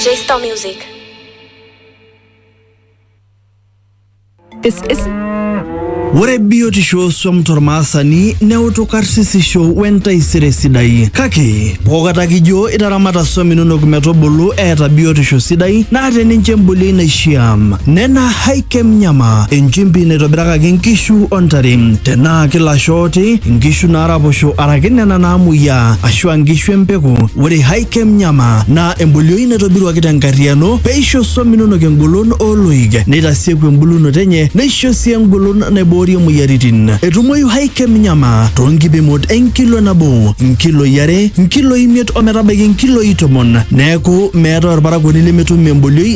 J-Star Music. This is ore biotisho swam tormaasani neutu karsisisho wentaisere sidai kake pookata kijo itaramata swam inonok metubulu eeta biotisho sidai naa teninche embolioi naishiaa nena hai Kemnyama enchimpi naitobirakaki nkishu o ntare. Tenaa kilasho ooti, nkishu naaraposho araki nena naamuoyiaa aashu a nkishu e mpeku, ore Hy Kemnyama naa embolioi naitobiruaki te nkarriyiano pee eisho swam inonok engolon oo loik, neitasieku embulunoto enye neisho sii engolon naiboorie moyiaritin. Etumoyu Hy Kemnyama too nkipimot e nkilo nabo, nkiloi are, nkiloi imiet o metabaiki nkiloi tomon. Neeku meetae olparakuoni lemetum embolioi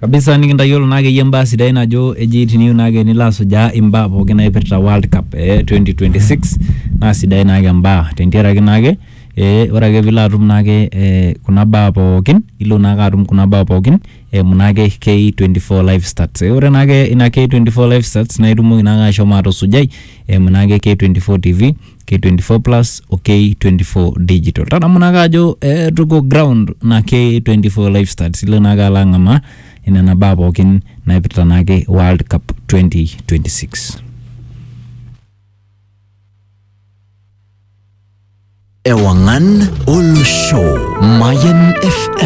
kabisa nikintayiolo naa akeyie imbaa sidain ajo eji tiniyieu naa ake nilo asujaa imbaa pookin naipirta World Cup e 2026 naa sidain naake imbaa tentiaraki naake ee ore ake piilo atum naake ee kuna baa pookin ilo naake atum kuna baa pookin eimu naake K24 live stats. Ore naake ina K24 live stats nae itumoki naake ashomo atusujai eimu naake K24 tv. K24 Plus o K24 Digital. Tadamu naake ajo eh, tuko ground na K24 Lifestyle silo naake alo ang'amaa inena baa pookin naipirta naake World Cup 2026. Ewangan Ulu Show, Mayan FM.